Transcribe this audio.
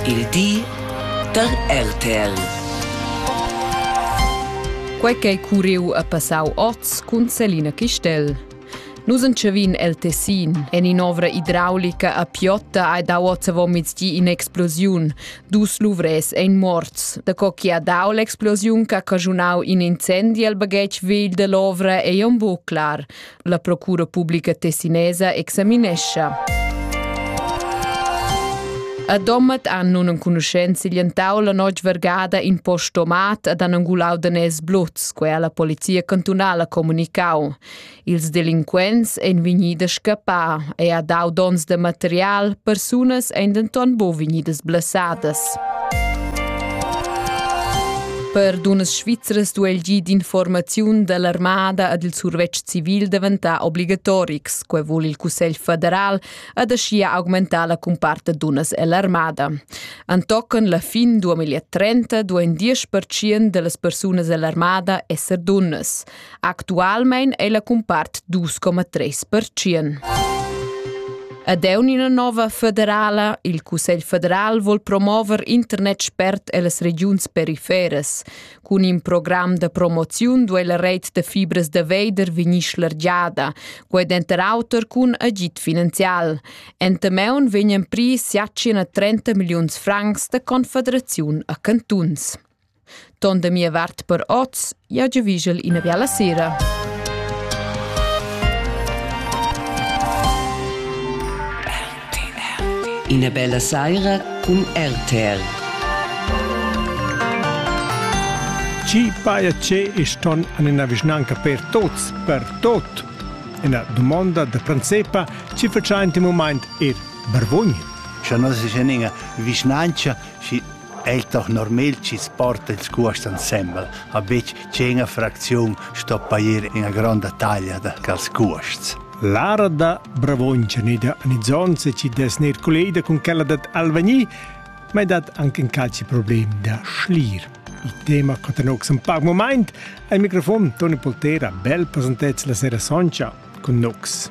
Il di da RTL. Quei ch'ei curriu a passau oz cun Selina Chistel. Nus entschevin el Tessin. En in'ovra idraulica a Piotta ha dau oz avomizdi in'explosiun. Dus luvres ein morts. Da co chi ha dau l'explosiun che ha caschunau in incendi al baghetg vegl dall'ovra ei aunc buc clar. La Procura publica tessinesa examinescha. A Dommat han nunenconuschents siglientau la notg vergada in post tomat ad angulau danés bluts, quei la polizia cantunala comunicau. Ils delinquents ein vegni da scappar e ha dau dons de material, persunas ein denton bu vegnidas blessadas. Per dunnas svizras duai il gi d'informaziun da l'armada ed il survetsch civil daventar obligatorics. Quai vul il Cussegl federal ed aschia augmentar la cumpart da dunnas ell'armada. Antochen la fin 2030 duain 10% da las persunas ell'armada esser dunnas. Actualmein è la cumpart 2,3%. Ed è una nova federala. Il Cussegl federal vuol promover internet spert ellas regiuns periferes. Cun in program de promoziun duei la reit de fibres de veider vegnir schlargiada, quei denter auter cun agid finanzial. Entameun vegnan pri siacina 30 milliuns francs de confederaziun a cantuns. Ton da mia vart per oz, jau giuvischel ina biala sera. Ina bella saira cun RTR. Ci paia ce iston an ina vischnanca per tots, per tot. Ina domanda da pranzepa ci faciaint in moment er Barvogn? Scha nos es eninga vischnanca, schi El Tochnormel chi's porta ils cuosts insembel ha betg tschena fracziun sto pair ina gronda taglia da quels cuosts. Lara da Bravongia ne da Nizzonze ci des ner collega con quella dat Alvagni, ma è dat anche in calci problem da schlir. Il tema catanox un pac moment, al microfon Toni Poltera bel presentez la sera soncha con Nox.